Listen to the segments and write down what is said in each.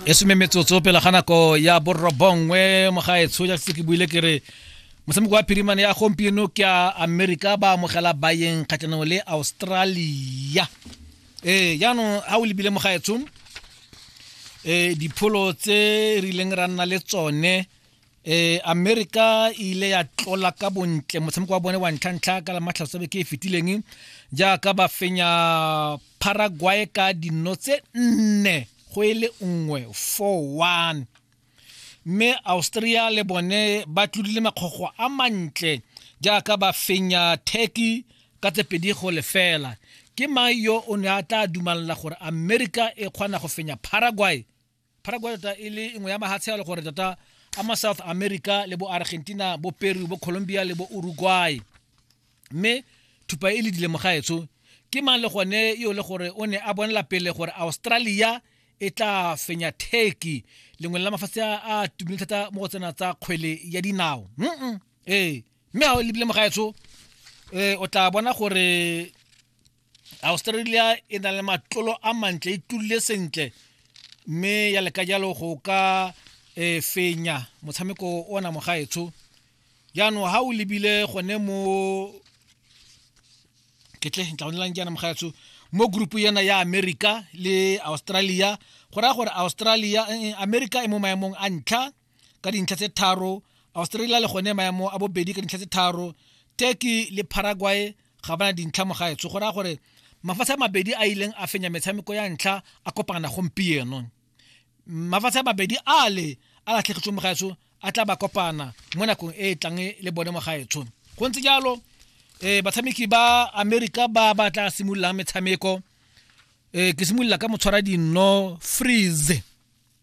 e some metsotso pela ga nako ya borobongwe mogaetsho ja se ke buile ke re motshameko wa phirimane ya gompieno ke a amerika ba amogela bayeng kgatlhanong le australia ee jaanong ga o lebile mogaetsho um dipholo tse re ileng ra nna le tsone e america e ile ya tlola ka bontle motshameko wa bone wa ntlhantlha ka la matlhasobe ke e fetileng jaaka ba fenya paraguay ka dino tse nne go e le nngwe 4-1 mme austria le bone ba tlodile makgogo a mantle jaaka ba fenya turkey ka tse pedi go lefela ke mang yo o ne a tla dumalela gore america e kgona go fenya paraguay paraguay tota e le nngwe ya mahatshe a le gore tota a ma south america le bo argentina bo peru bo colombia le bo uruguay mme thupa e le dilemo gaetsho ke mang le gone yo le gore o ne a bonela pele gore australia e tla fenya turkey lengwe la mafatshe a tumile thata mo go tsena tsa kgwele ya dinao ee mme ga o lebile mogaetsho um o tla bona gore australia e na le matlolo a mantle e tlulile sentle mme ya leka jalo go ka e fenya motshameko ona mogaetsho jaanong ga o lebile gone mo ketle tla bonelang jaana mogaetsho mo grupu yana ya america le australia go raya gore australia eh, eh, america e mo maemong a ntlha ka dintlha tse tharo australia le gone maemo a bobedi ka dintlha tse tharo turkey le paraguay ga bana dintlha mo gaetsho go raya gore mafatshe a mabedi a ileng a fenya metshameko ya ntlha a kopana gompieno mafatshe a mabedi a le a latlhegetswe mo gaetsho a tla ba kopana mo nakong e e tlang le bone mo gaetsho go ntse jalo um batshameki ba america ba ba tla simololang metshameko um ke simolola ka motshwara dinno freeze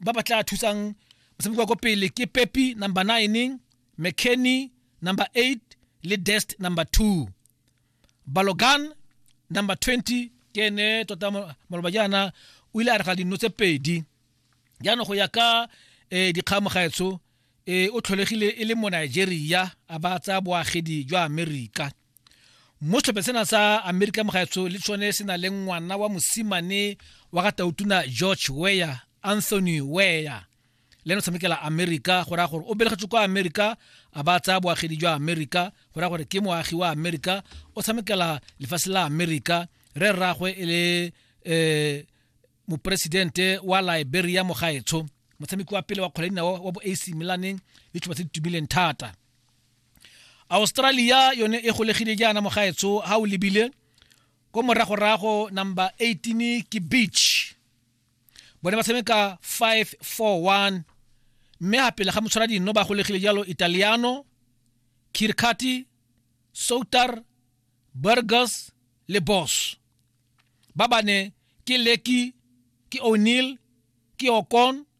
ba ba tla thusang motshameko wa ko pele ke pepi number 9 mckenny number 8 le dest number 2 balogan number 20 ke ene tota mo- maloba jaana o ile a rega dino tse pedi jaanong go ya ka um dikgamo gaetsho um o tlholegile e le mo nigeria a ba tsaya boagedi jwa amerika mo setlhophe sena sa amerika mogaetsho le tshone se na le ngwana wa mosimane wa ga tautuna george weya anthony weya le ene o tshamekela amerika go raya gore o belegetswe kwa amerika a ba tsaya boagedi jwa amerika go raya gore ke moagi wa amerika o tshamekela lefatshe la amerika re rragwe e le um moporesidente wa liberia mogaetsho motshameki wa pele wa kgwele dinao wa bo ac milaneng le tšhoba tse di tumileng thata australia yone e golegile jaana mogaetsho ga o lebile ko moragorago number 18 ke beach bone ba tshameka 541 mme ga pele ga motshwara dinno ba golegile jalo italiano kirkati soutar burgers le boss ba bane ke leki ke o'neil ke okon